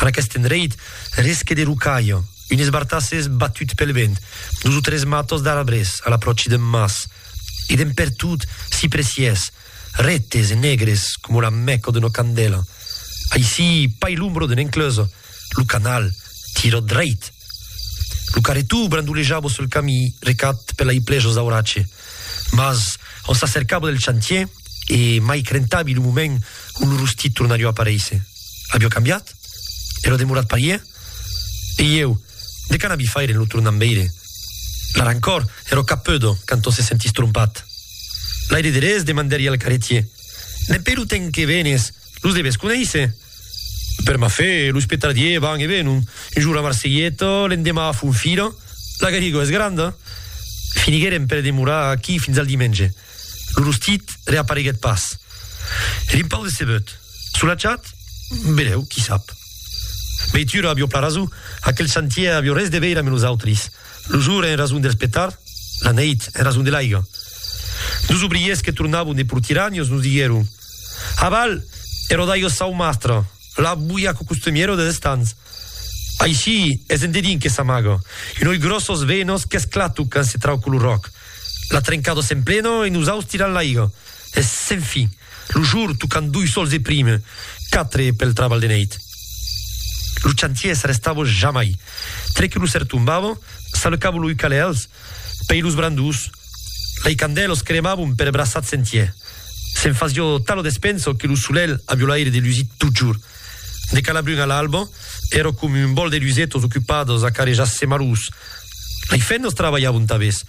En aqueste endreit, resque de rocalha, un esbartàs es batut pel vent, dos o tres matos d'arbres a l'apròchi d'un mas, e d'en pertot s'i presiés, retes e negres coma la mèco d'una candèla. Aicí, pair l'ombra d'una encleusa, lo canal tira dreit. Lo carretó brandolejava sul camí recat per lai plejos d'auratge, mas ont s'acercava del chantier e mai crentavi lo moment ont lo rostit tornarió aparéisser. Avió cambiat, e lo demorat parié, e ieu, de qu'an abi faire en lo tornant veire? La rancor ero cap peudo canto se sentís trompat. L'aire derés demandèri al caretier, Dempé lo temps que venes, los deves conéisser? Per ma fe, los petardiers van e venon, un jour a Marselheta, l'endemà a Fonfira, la Garrigó es granda! Finigueren per demorar aquí fins al dimenge. Lo rostit reapareguèt pas. Eri un pauc decebut. Solatjat? Benèu, qui sap. Veitura, avió plan rason, aquel chantièr avió res de veire amb nosautris. Lo jour en rason dels petards, la neit en rason de l'aiga. Dos obriers que tornavan de Portiragnos nos diguèron, Aval, e rodaigós Saumastre! La boia costumièra des estans. Aicí es en dedin que s'amaga. Un oi gròssos venos qu'esclatu quand se trauco lo ròc. La trencada s'emplena e nosaus tiran l'aiga. Es sen fin. Lo jor tocant doi sols e prime quatre pel trabalh de neit. Lo chantier s'arrestava jamai. Tre que lo ser tombava, s'alecava lo ucalè als. Pei los brandus, lei candèlos cremavon per braçats entier. Se'n fasió tal o despenso que lo solelh avió l'aire de lusir totjorn. De Calabrun a l'alba, èro com un bòl de lusetos ocupados a carejar semalhós. Lei fennos trabalhavon tabés.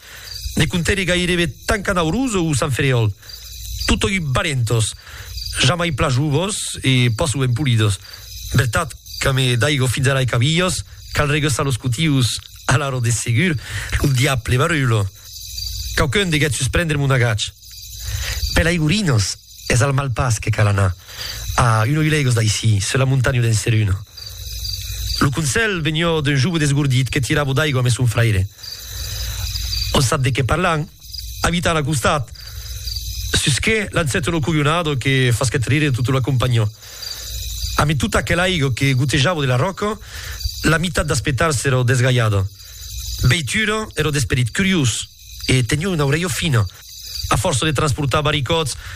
Ne contéri gairebe tant qu'an Aurós o Sant Ferriòl. Totòi valentos, jamai pla jovos e pas sovent polidos. Vertat, qu'ame daigo fins ara e cavilhos, cal regeusar los cotius. Alara de segur, lo diable barulho! Quauqu'un deguèt susprendre mon agach. Per l'aigurinos, es al Malpàs que cal anar, a un oi lègos d'aicí, sus la montanha d'en Seruna. Lo conselh venió d'un jove desgordit que tiravo d'aigua mes son fraire. On sap de qué parlan, abitan a costat, susqué l'ancèto lo coglionado que fasquèt rire tota la companhió. Amé tota aquela aigo que gotejavo de la ròca, la mitat das petals èra desgalhada. Beitura èra d'esperit curiós e teniá una aurelha fina. A fòrça de transportar baricòts,